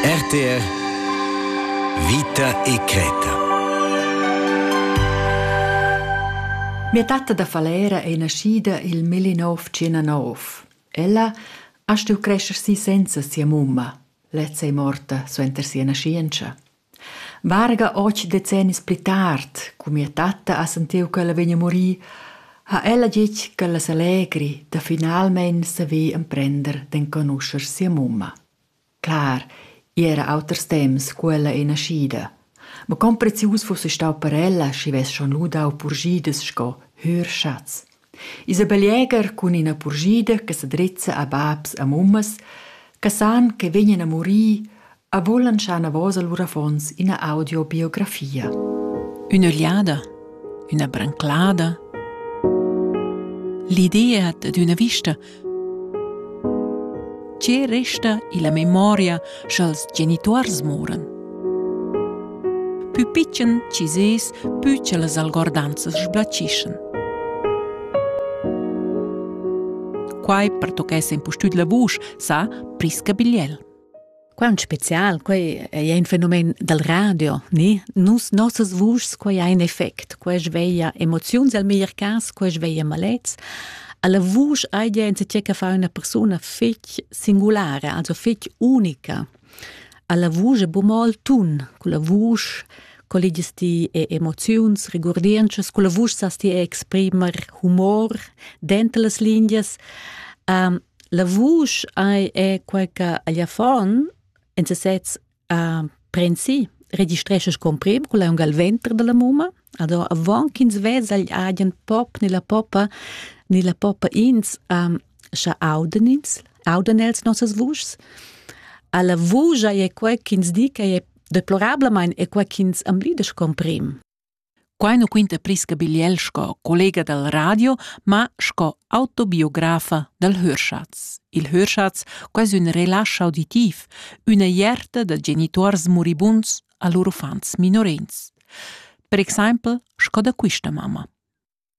RTR Vita e cretta Mia tatta da Falera è naschida il 1909. Ella ha stuiu crescer si senza sia mumma. Lezza è morta suenter sia naschientscha. Varga otg decennis pli tard, cu mia tatta ha sentiu ch'ella vegn a murir, ha ella detg ch'ella s'allegri da finalmein saver emprender d'enconuscher sia mumma. Clar, igl era auters temps cu ella ei naschida, ma con prezius fuss ei stau per ella, schi vess schon lu dau purschidas sco hür schatgs. Isabel Jäger cun ina purschida che sa drizza a babs e mummas che san che vegnan a murir e vulan schar enavos a lur affons ina audiobiografia. Ün'ögliada, üna branclada. L'idea d'üna vista Tge resta illa memoria scha'ls genituors moran? Pü pitschen chi sez, pü cha las algordanzas sblachischan. Quai pertochess impustüt la vusch, sa Prisca Bigliel. Quant spezial, quei ei ein fenomen dal radio, ni? Nus nossas vuschs, quei ha in effect, quei sveglia emoziuns al meglier cas, quei sveglia malets. Alla vusch hai die enzatgé che fa una persona fetg singulara, also fetg unica. Alla vusch è bu mo il tun, con la vusch colligies ti e emoziuns, regurdientschas, con la vusch sas ti exprimer humor dentro las linguas. Um, La vusch ei è quei che agl affon en sesez ha prensi registrescha scompriu cun aunc al venter dalla mumma Ado avon ch'ins vesa agl agen pop ni la poppa ni la poppa ins um, scha auden ins, auden els nossas vuschs. Alla vugia è quei ch'ins di che è deplorablamain è quei ch'ins amblida scomprim. Quai nu quinta Prisca Bigliel sco collega dal radio, ma sco autobiografa dal Hörschatz. Il Hörschatz quais ün relasch auditiv, üna ierta da genituors muribunds a lur uffants minorins. Per exaimpel sco da quista mamma.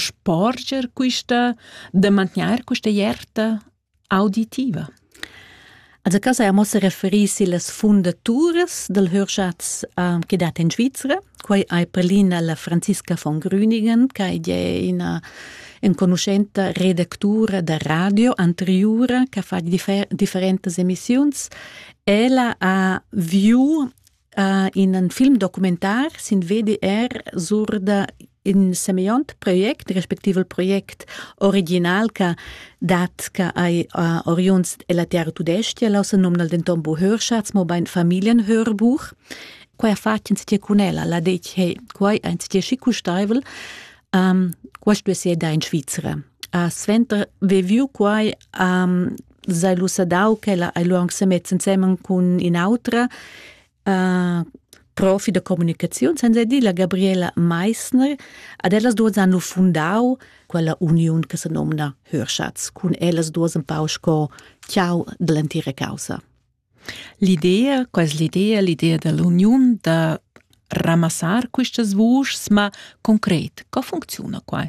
sporger quista, da mantgnair questa ierta auditiva? Also cas ha mossa referì sillas fundaturas del Hörschatz uh, che dat in Svizzera. Quai hai prelina la Franziska von Grüningen, che è una enconuschenta redactura da radio anteriore che fa differ- differentes emissioni. Ella ha viu Uh, in un film documentar sin VDR sur da in semeiont project respectiv il project original che dat che ai uh, oriunds della terra tudestia la se nomnal denton bo Hörschatz mo bein Familienhörbuch quai ha fatg in cun ella la detg hey quai ein ti schi custaivel um, qual stuess eda in Svizzera A suenter ve viu quai a sai lu sadau ch'ella ei lu aunc semets ensemen cun in'autra uh, profi da communicaziun, senza dir la Gabriela Meissner. Ad ellas duas han lu fundau quella uniun che se nomna Hörschatz, cun ellas duas un pau sco ciao dell'entira causa. L'idea, quell'idea, l'idea dell'uniun da ramassar questas vuschs, ma concret, co funziona qua?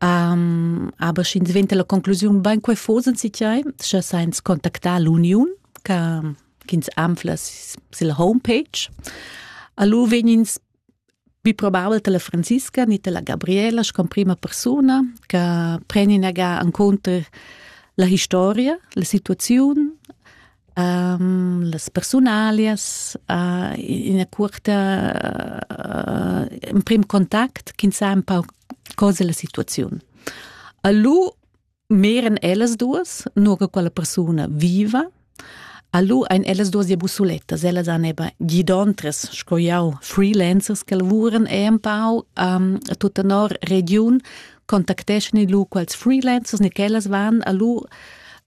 Aber sch'ins venta la conclusiun bain quai fosen si tiai, scha sainz contactar l'uniun ch'ins anfla sil homepage. Allu vegnins pi probabel ta la Franziska ni ta la Gabriela sco prima persuna che preni naga encunter la historia, la situaziun, las persunalias uh, ina cuorta uh, emprim contact ch'ins sa un pau cosa la situaziun. A lu meran ellas duas, nur che quella persuna viva. A lu ein ellas duas ja busulettas, ellas han eben gidontres, sco jau, freelancers che lavuran e un pau um, tutta nor region, contacteschan lu quels freelancers ni ch'ellas van a lu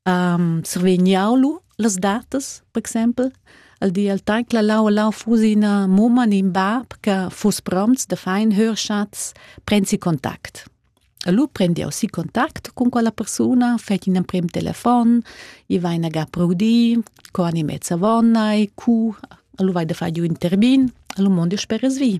um, survegnau lu las datas, per exempel, al di al tag la lau lau fusina mumma in bab che fuss promts da fein hörschatz prensi kontakt. Allora prendi aussi contact con quella persona, fai un prim telefon, i vai na ga proudi, co ani mezza vonna e cu, allora vai da fare un intervin, allora mondo spera svi.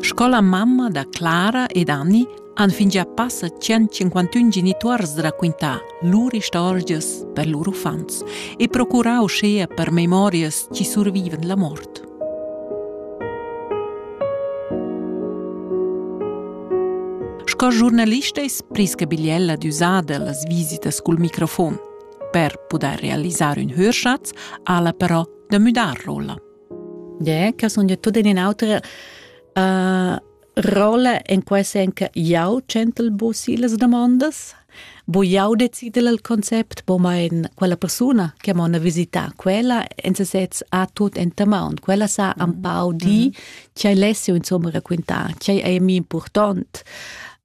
Sco la mamma da Clara ed Anni han fingià passa 151 genituors raquintà lur istorgias per lur uffants e procurà uschea per memorias chi survivan la mort. Sco giornalista es Priska Bigliella d'üsada las visitas cul microfon. Per pudair realisar ün hörschatz ha ella però da müdar rolla? Yeah, che sun io tut in un'altra uh, rolla in quel sen che jau centel bo silas domandas, bo jau decidel il concept, bo ma in quella persona che m'ona visita quella in sesez ha tut in tamon. Quella sa un mm-hmm. pau di mm-hmm. che lesse insomma raccontare, che è mi important.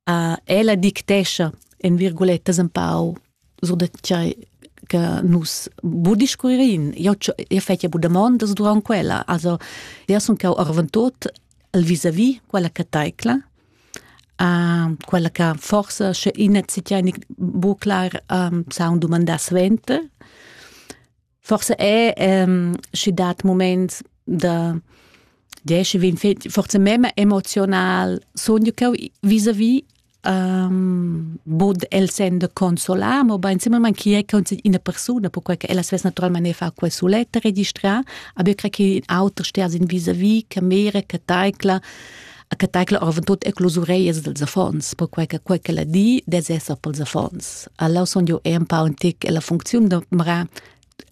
Uh, ella dictescia in virgulettas un pau sur da tgei che nus bu discurririn. Io io fetja bu damondas durant quella. Also, io sun cau arventot al vis-a-vis quella che taicla. Uh, quella che forse sche ina si tieni bu clar um, sa un domandar svente. forse è ehm, schi dat moment da diesche vin forse mema emozional sogno che vis a vis um, bod el sendo consolar, ma ben simpelmente chi è una persona, perché che ella stessa naturalmente fa quel suletta registrare, aber ich kriege auch auter stehen sind vis-à-vis, che mire, che taikla, che tecla orvon tut e clus ureias dels affons, perquei che quei che la di des esser pels affons. Alla son jo e un pa un tic e la funziun de mra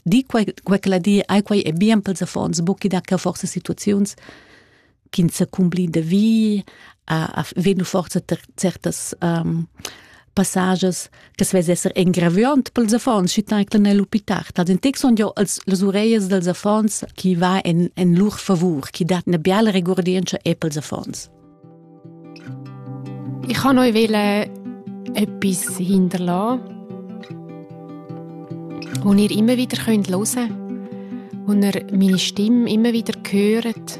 di quei, quei che la di ai quei è bien pels affons, bucchi da che forse situaziuns kin se cumbli de vi, a, a venu forse certas um, passages che svess esser engraviant pels affons schi taicle nel hospital. Dad in text son jo als las ureias dels affons chi va in, in lur favur, chi dat una biala regordienza e pels affons. Ich kann euch wollen etwas hinterlassen, das ihr immer wieder hören könnt und ihr meine Stimme immer wieder hört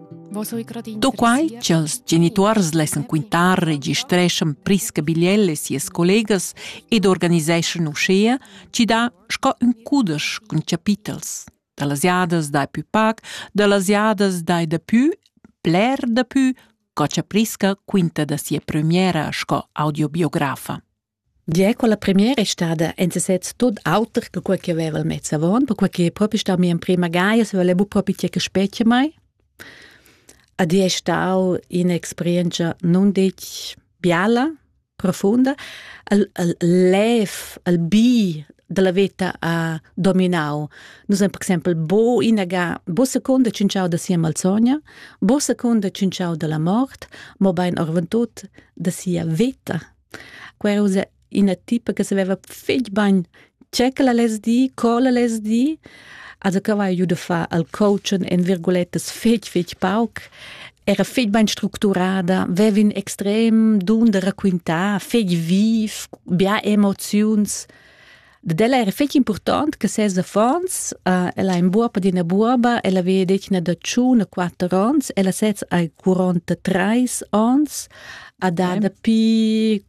Do quai ch'ils genituors lessan quintar, registreschan Prisca Bigliel e sias collegas ed organiseschan uschea chi dà sco ün cudesch cun chapitels da las jadas dai pü pac, da las jadas dai dapü, bler dapü, co cha Prisca quinta da sia premiera sco audiobiografa. Gie, quella premiera è stada en sesez tot auter che quella che aveva mezz avon, perquei che propi stau mia emprema gaia, se voleva propi tgei che specie mai. Ed è stau un'esperienza non detg biala, profunda. Il, il lev, il bi della vita ha dominau. Nus haben per exempel bo inaga, bo seconda cinciau da sia malsogna, bo seconda cinciau della mort, mo bein orventut da sia vita Quei ussa ina tipa che saveva fetg bagn tge che la less dir, co la less dir. Also che aveva giu da far al coaching en virguletas fetg, fetg pauc. Era fetg bein structurada, veva in extrem dun da raquintar, fetg viv, bia emoziuns. Dad ella era fetg impurtant che ses affons, uh, ella è in buoba di una buoba, ella aveva detg da tschun quatter onns, ella sez hai 43 onns, ha da dapi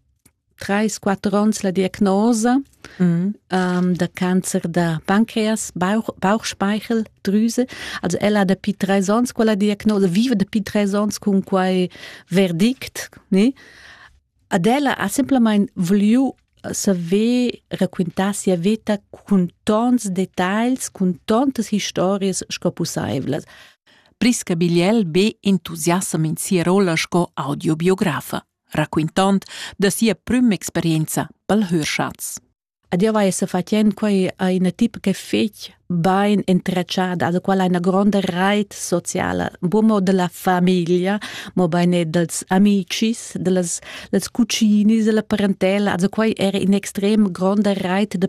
3-4 onns la diagnosa mm. um, da Cancer da Pancreas, Bauch, Bauchspeicheldrüse. Also ella ha dapi drei Sons quella diagnosa, vive dapi drei Sons cun quei verdict, ne? Ad ella ha semplamein vuliu saver raquintar sia veta cun tons detagls, cun tontas historias sco pusseivlas. Prisca Bigliel be entusiassam in sia rolla sco audiobiografa, raquintond da sia prüm experienza pel Hörschatz. Ed io vai sefattend quai a ina tipa che fich bain entretschada, da quella ha ina gronda reit sociala, buca mo dalla famiglia, mobein er dals amicis, dallas, dals cucinis, dalla parentela. Also quai era in extrem gronda reit de